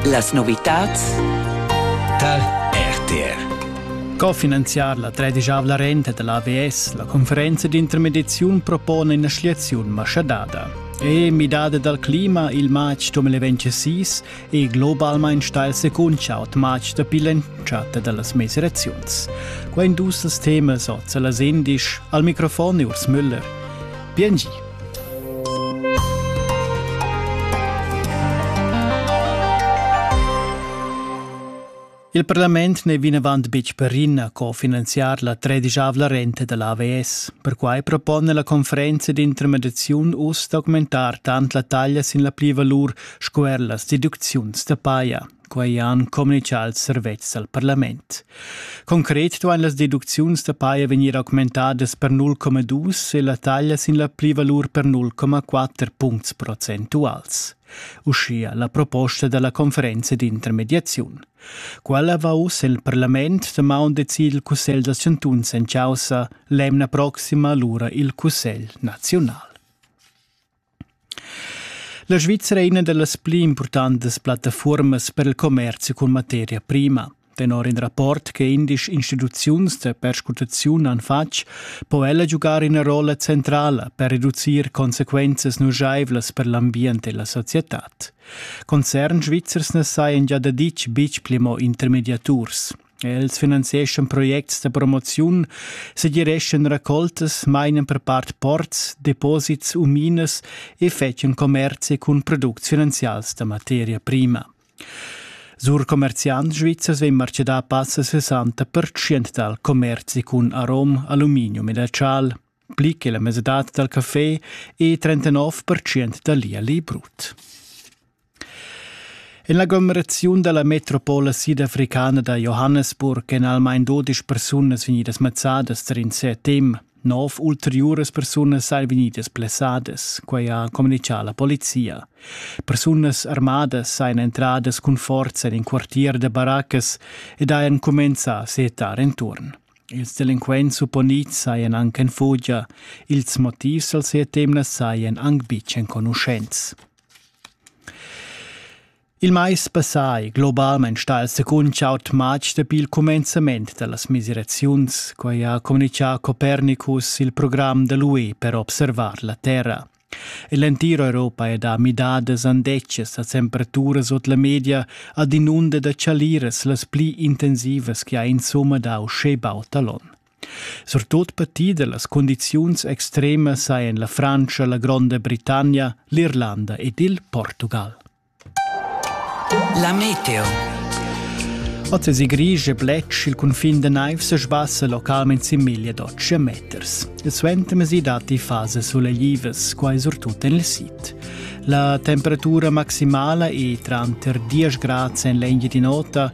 Las novitads tar RTR. Cofinanziar la tredischavla renta dell'AVS la conferenza d'intermediaziun propone ina schliaziun maschadada. E midada dal clima il matg 2026 è globalmain stail secuncha al matg dapi l'entschatta da las mesiraziuns. Quai dus als temas oz a las indisch al microfon Urs Müller. Bien gi. Il parlament n'è vinavant betg perina co finanziar la tredischavla renta da l'AVS. Perquai propone la conferenza d'intermediaziun uss d'augmentar tant la taglia sin la plivalur sco er las deducziuns da paja. Quei han communicau ils servetschs al parlament. Concret duein las deducziuns da paia vegnir augmentadas per 0,2 e la taglia sin la plivalur per 0,4 puncts procentuals. Uschia la proposta dalla conferenza d'intermediaziun. Quella va uss el parlament damaun decid il Cussegl da chantuns en causa l'emna proxima lura il Cussegl nazional. La Svizra è ina da las pli impurtantas plattafurmas per il commerzi cun materia prima. Tenor in rapport che indisch instituziuns da perscrutaziun han fatg, po ella giugar ina rolla centrala per reducir consequenzas nujaivlas per l'ambient e la societad. Concern svizzers na sajan gia daditg betg pli mo intermediaturs. Els finanzieschan projects da promoziun, segireschan raccoltas, mainan per part ports, deposits u minas e fetschan commerzi cun products finanzials da materia prima. Sur commerziant svizzers vegn marcedà passa 60% dal commerzi cun arom, aluminium e da chal. pli che la mesadad dal café e 39% da l'ierli brut. En l'aglomeraziun da la metropola sidafricana da Johannesburg èn almain dudesch persunas vegnidas mazzadas tar in CTM. Nov ulteriuras persunas sain vegnidas blessadas, quai ha communitgà la polizia. Persunas armadas sain entradas cun forza en in quartier da baraccas ed hajan cumenzà a setar enturn. Ils delinquents supponids sajan anc en fugia. Ils motivs al sia temna sajan anc betg enconuschents. Il mais passà è globalmain stà il secund aut matg dapi il cumenzament da las misiraziuns, quai ha communitgà Copernicus il program da l'UE per observar la Terra. E l'entira Europa è da midadas andetgas a temperaturas ord la media ad inunda da chaliras las pli intensivas che ha insumma dau schebaut talon. Surtut patida las condiziuns extremas sajan la Frantscha, la Gronda Britannia, l'Irlanda ed il Portugal. La meteo. Oz è gris e bletsch, il cunfin da naiv se sbassa localment sin miglia d'otg meters. E suenter mesi datti fase suleglivas, quai surtut en il sid. La temperatura maximala è tranter 10 grad en l'engia di nota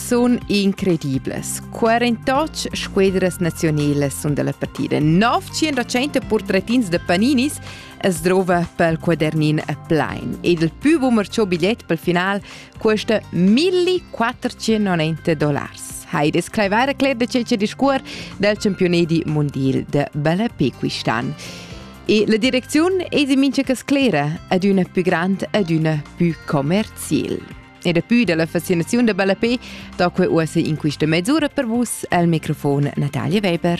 sun incredibles. 48 squadras nazionelas sun dalla partida. 900 portretins da Paninis es drova pel quadernin plain ed il più boomer cho bigliet pel final cuesta 1490 dollars. Heide Scleivaira cler da cece discuor dal championat di mondial de Balapé quist'an. E la direcziun è di mincha cas sclera ad una più grand ad una più commercial. E dapi dalla fascinaziun da ballapé da quei uossa in quista mesura per vus el microfon Natalia Weber.